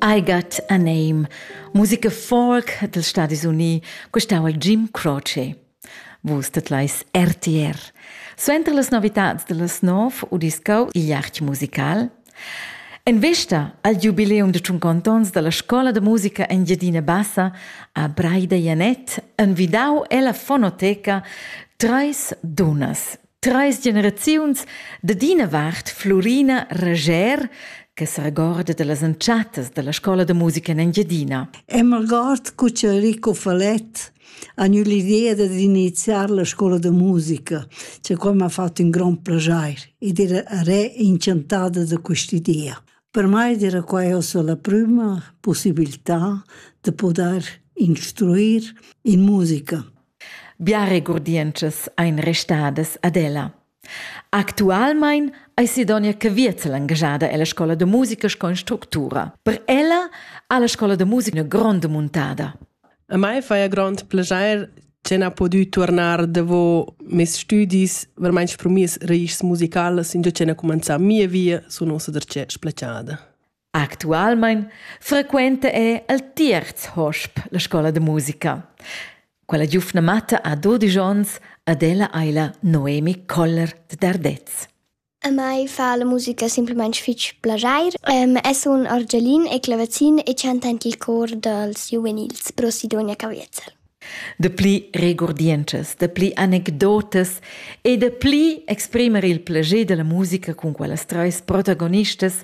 I Got a Name, musica folk dels Stadis Unii, questau al Jim Croce. Vus tetlais RTR. Suenter las novitats de les nov udiscau il jahch musical. En vesta al jubileum de Tschuncontons dalla Scola de Musica Engiadina Bassa a Braida Janet envidau ella fonoteca Treis Dunas, Treis generaziuns dad ina vart Florina Rager, che s'regorda dallas entschattas dalla scola da musica in Engiadina. E m'regord cu c'è Rico Falet ha gnü l'idea dad iniziar la scola da musica, che qua m'ha fatto un gran piacere ed era re incantata da quest'idea. Per mai era questa la prima possibilità de poter instruir in musica. Bia regurdientschas ein restadas ad ella. Actualmein ei Sidonia Caviezel engagada ella scola da musica sco instructura. Per ella ha la scola da musica una gronda muntada. A mai fa grond piacere che ha potuto tornar davo mes studis veramente per mes rais musicales, in già che ha cominciato mia via su nossa derce splacciada. Actualmein frequenta ei el tierz hosp la scola da musica. Quella giufna matta ha dudisch onns ad ella ei la Noemi Koller de Dardez. A mai fa la musica semplamein fitg plageir. Um, es un argialin e clavazin e chanta en il cor dels giuvenils Pro Sidonia Caviezel. Dapli regurdientschas, dapli anecdotas e dapli exprimer il plascher dalla musica cun quellas treis protagonistas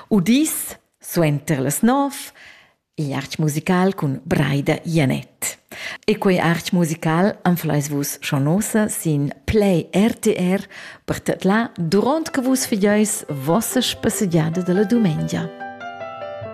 udis suenter las nov igl artg musical cun Braida Janett. E quei artg musical anfleis vus schon nosa sin Play RTR per tedlar duront che vus figeis vossa spassegiada dalla dumengia.